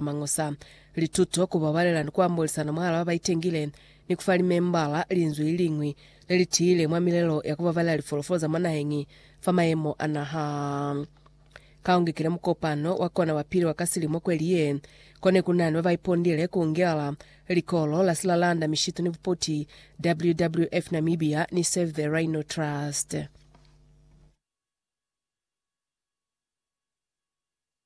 Mañusa lituto, ku babalela ni ku ambolisana mwahala ba ba itengile, ni ku fa limembala linzwi li liñwi le li tiile mwa milelo ya ku babalela lifolofolo za mwa naheñi fa mayemo a naha. Ka u ngekile mukopano wa kona wa pili wa ka silimo kweli ye, ko ne ku na ni ba ba ipondile ku ngela Likolo la Silalanda Mishitu ni Bupoti, WWF Namibia, ni Save the Rhino Trust.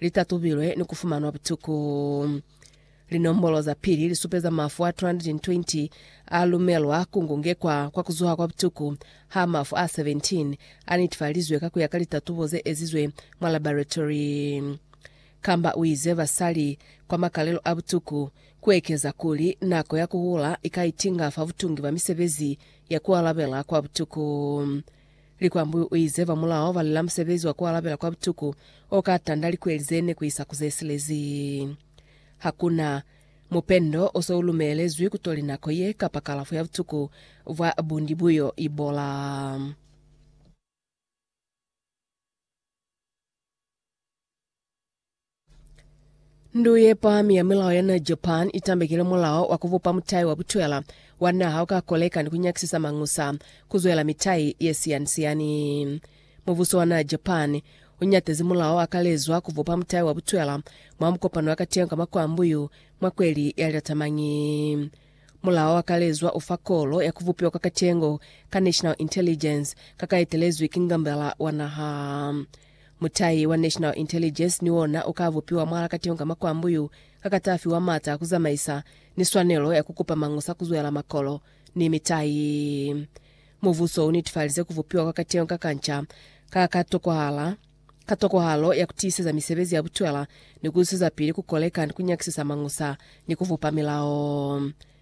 li tatubilwe ni ku fumanwa butuku. Linombolo za pili li supeza mafu a 220 a lumelwa ku ngungekwa kwa ku zuha kwa butuku, ha mafu a 17 a netefalizwe ka ku ya ka litatubo ze ezizwe mwa laboratory. Kamba u ize basali kwa makalelo a butuku ku ekeza kuli nako ya ku hula i ka itinga fa butungi bwa misebezi ya ku alabela kwa butuku. Likwambu o ize ba mulao ba lila musebezi wa ku alabela kwa butuku o ka tanda likweli ze ne ku isa ku ze silezi. Ha ku na mupendo o se u lumelezwi ku toli nako ye kapa kalafo ya butuku bwa bundi bu yo ibola. Ndu ye pami ya milao ya na Japan i tambekile mulao wa ku bupa mutai wa butwela wa naha u ka koleka ni ku nyakisisa mañusa ku zwela mitai ye siani-siani. Mubuso wa na Japan u ñatezi mulao o akalezwa ku bupa mutai wa butwela mwa mukopano wa kateño ka makwambu yu mwa kweli ya Lilatamanyi. Mulao o akalezwa u fa kolo ya ku bupiwa kwa kateño ka National Intelligence ka ka etelezwi ki Ngambela wa Naha. Mutahi wa National Intelligence ni ona u ka bupiwa mwa Lakatengo ka makwambu yu ka ka ta fiwa mata a ku zamaisa ni swanelo ya ku kupa mañusa ku zwela makolo ni mitahi. Mubuso u netifalize ku bupiwa kwa Katengo ka Kanca ka ka tokwahala ka tokwahalo ya ku tiiseza misebezi ya butwela ni ku zwezapili ku koleka ni ku nyakisisa mañusa ni ku bupa milao.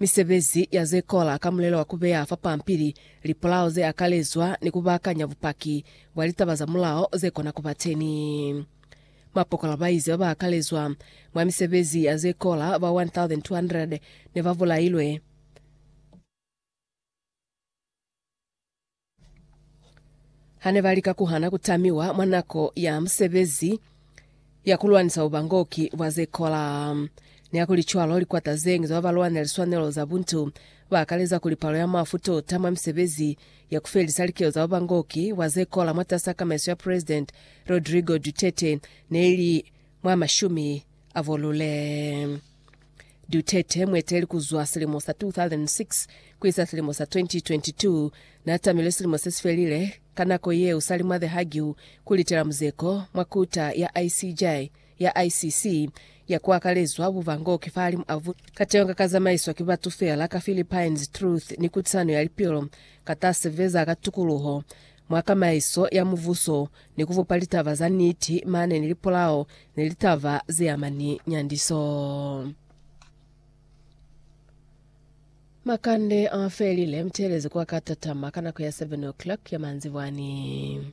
Misebezi ya ze kola ka mulelo wa ku beya fa pampili lipolao ze akalezwa ni ku baakanya bupaki bwa litaba za mulao ze kona ku ba teñi. Mapokola ba ize ba ba akalezwa mwa misebezi ya ze kola ba 1,200 ne ba bulailwe. Ha ne ba lika ku hana ku tamiwa mwa nako ya musebezi ya ku lwanisa bubangoki bwa ze kola. Nihakulicwalo, likwata ze ñwi za ba ba lwanela liswanelo za buntu ba akaleza kuli palo ya mafu tota mwa misebezi ya ku felisa likelo za bubangoki bwa ze kola mwatas'a kamaiso ya President Rodrigo Duterte ne i li mwa mashumi avolule Duterte, mueteli kuzwa silimo sa 2006 kuisa silimo sa 2022, naatamilwe silimo sesifelile, ka nako yeo salima The Hague kulitela muzeko mwa Kuta ya ICJ ya ICC ya kuakalezwa bubango kifahalimu a vu kateño kakazamaiswa ki batu feela ka Philippines Truth ni Kutisano ya Lipilo katasebeza ka tukuluho mwa kamaiso ya muvuso ni ku bupa litaba za niti mane ni lipolao ni litaba ze ama ni nyandiso. Makande a felile mutelezo kwa ka tatama ka nako ya 7 o'clock ya manzibwani.